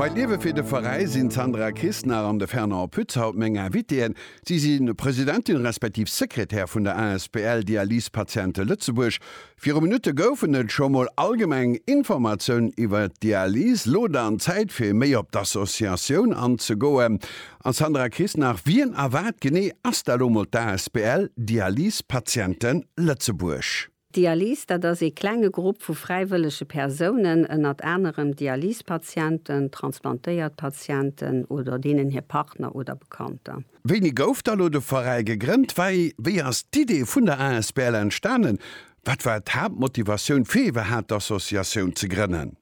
Bei d'Liewe fir de Veräi sinn d'Sandra Kisnar an de Fernand Pütz haut meng Invitéen. Si si Presidentin respektiv Sekretär vun der asbl Dialysepatiente Lëtzebuerg. Viru Minutte goufen et scho mol allgemeng Informatiounen iwwer d'Dialyse. Lo dann Zäit fir méi op d'Associatioun anzegoen. A Sandra Kisnar, wien a wat genee ass da lo mol d'asbl Dialysepatiente Lëtzebuerg? D'Dialyse, dat ass ee klenge Grupp vu fräiwëllege Persounen, ënnert anerem Dialysepatienten, transplantéiert Patienten oder deenen hir Partner oder Bekannter. Wéini gouf da lo de Veräi gegrënnt? Wéi ass d'Idee vun der asbl entstanen? Wat war d'Haaptmotivatioun fir iwwerhaapt d'Associatioun ze grënnen?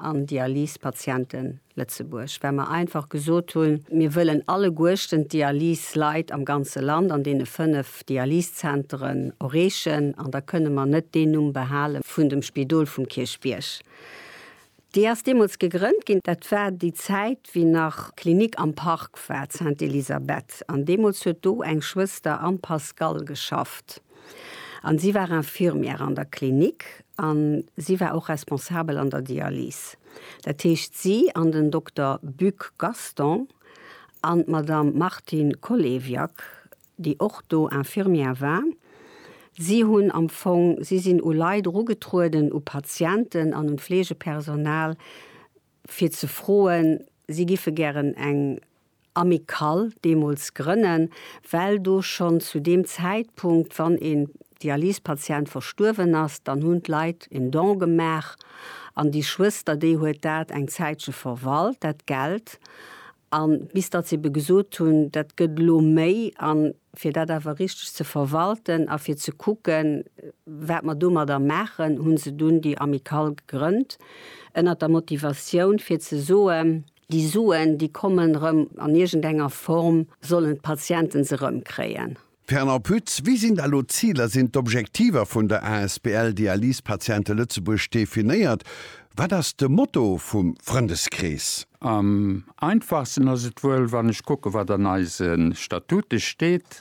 an Dialysepatiente Lëtzebuerg, well mer einfach gesot hunn, mir wëllen alleguerchten d'Dialyseleit am ganze Land an deene fënnef Dialysezenteren erreechen an da kënne mer net deen Numm behale vun dem Spidol vum Kierchbierg. Déi ass deemools gegrënnt ginn, dat war déi Zäit, wéi nach d'Klinik am Park war, d'Sainte-Elisabeth, an deemools huet do eng Schwëster am Pascal geschafft. An si war Infirmière an der Klinik an si war och Responsabel an der Dialyse. Dat heescht, si an den Dokter Buck Gaston an d'Madame Martine Kolewiak, déi och do Infirmière war, si hunn am Fong, si sinn u Leit erugetrueden, u Patienten an un d'Fleegepersonal, fir ze froen, si giffe gären eng Amicale deemools grënnen, well do schonn zu deem Zäitpunkt, wann een Dialysepatient verstuerwen ass, dann hunn d'Leit en Don gemaach an déi Schwëster, déi huet dat eng Zäitche verwalt, dat Geld, An bis datt se ebe gesot hunn, dat gëtt elo méi, an fir dat awer richteg ze verwalten a fir ze kucken, wat mer domadder maachen, hu se dunn déi Amicale gegrënnt, ënnert der Motivatioun, fir ze soen, déi Suen, déi kommen erëm an iergendenger Form, sollen d'Patienten se erëmkréien. Fernand Pütz, Wéi sinn da elo d'Ziler, sinn d'Objektiver vun der asbl Dialysepatiente Lëtzebuerg definéiert? Wat ass de Motto vum Frëndeskrees? Am einfachsten ass et wuel, wann ech kucke wat an eise Statute steet.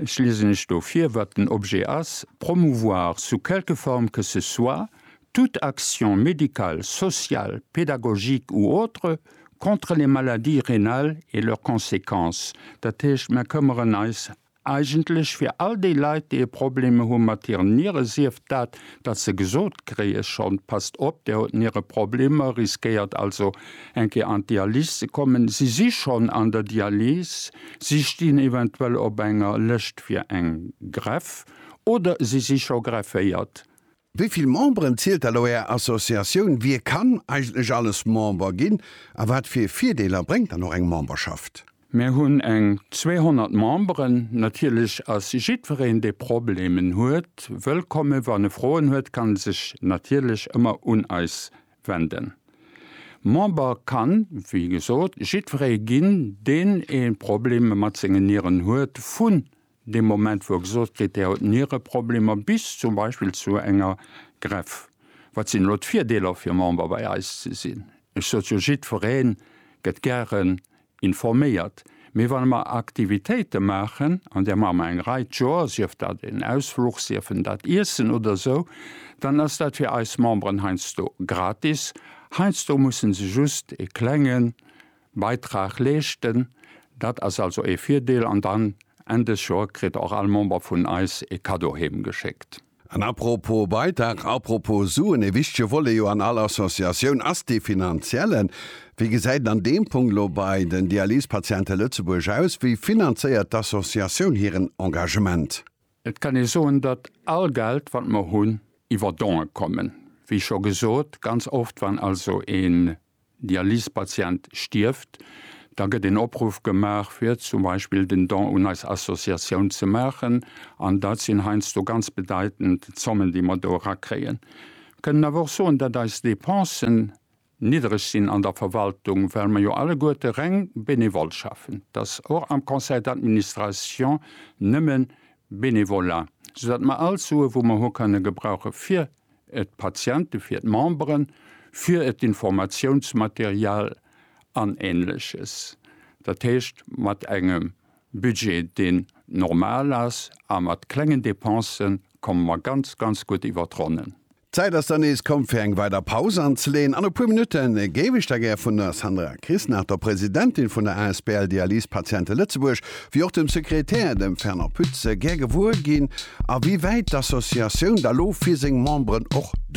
Ech liesen lech do vir wat den Objet ass, Promouvoir sous quelque forme que ce soit toute action médicale, sociale, pédagogique ou autre, Contre les maladies rénales et leurs conséquences, dat heescht, mer këmmeren eis eigentlech fir all déi Leit, déi e Problem hu mat hiren Niere, sief dat, datt se gesot kréie schonn, Passt op, Dir hutt Niereproblemer, riskéiert also eng Kéier an d'Dialys ze kommen, si si schonn an der Dialys, si stinn eventuell op enger Lëscht fir eng Greff oder si si scho grefféiert. Wéi vill Memberen zielt elo Är Associatioun? Wie kann eigentlech alles Member ginn a wat fir Virdeeler bréngt dann och eng Memberschaft? Mir hunn eng 200 Memberen. Natierlech ass jiddwereen, dee Problemen huet, wëllkommen. Wann e Froen huet, kann e sech natierlech ëmmer un eis wenden. Member kann, wéi gesot, jiddweree ginn, deen ee Probleme mat sengen Nieren huet, vu Dee Moment, wou e gesot kritt, dee huet Niereproblemer, bis zum Beispill zu enger Greff, wat sinn elo d'Virdeeler fir Member bei eis ze sinn? Ech sot jo, jiddweree gëtt gären informéiert. Mee wann mer Aktivitéite maachen, an där maache mer eng Rei d'Joer, sief dat en Ausfluch, sief en dat Iessen oder esou, dann ass dat fir eis Memberen heiansdo gratis. Heiansdo musse se just e klengen Beitrag leeschten. Dat ass also ee Virdeel. An dann Enn des Joer kritt och all Member vun eis ee Cadeau heem geschéckt. An à propos Beitrag, à propos Suen, ee wichtege Volet jo an all Associatioun ass dee finanziellen. Wéi gesäit et an deem Punkt elo bei den Dialysepatiente Lëtzebuerg aus? Wéi finanzéiert d'Associatioun hiren Engagement? Et kann ee soen, datt all Geld, wat mer hunn, iwwer Don'e kommen. Wéi scho gesot, ganz oft, wann also een Dialysepatient stierft, da gëtt een Opruff gemaach, fir zum Beispill den Don un eis Associatioun ze maachen. An dat sinn heiansdo ganz bedeitend Zommen, déi mer do erakréien. Kënnen awer och soen, datt eis Depensen Niddereg sinn an der Verwaltung, well mer jo alleguerte reng benevole schaffen. Et ass och am Conseil d'administration nëmme Benevolat, soudatt mer all d'Sue wou mer hu kënne gebrauche fir d'Patienten, fir d'Memberen, fir d'Informatiounsmaterial an Ähnleches. Dat heescht, mat engem Budget deen normal ass a mat klengen Dépensen komme mer ganz, ganz gutt iwwer d'Ronnen. D'Zäit ass dann nees komm fir eng weider Paus anzeleen an e puer Minutte géif ech da gär vun der Sandra Krisnach, der Presidentin vun der asbl Dialyse Patiente Lëtzebuerg, wéi och dem Sekretär, dem Fernand Pütz, gär gewuer ginn, a wéi wäit d'Associatioun da lo fir seng Memberen och do.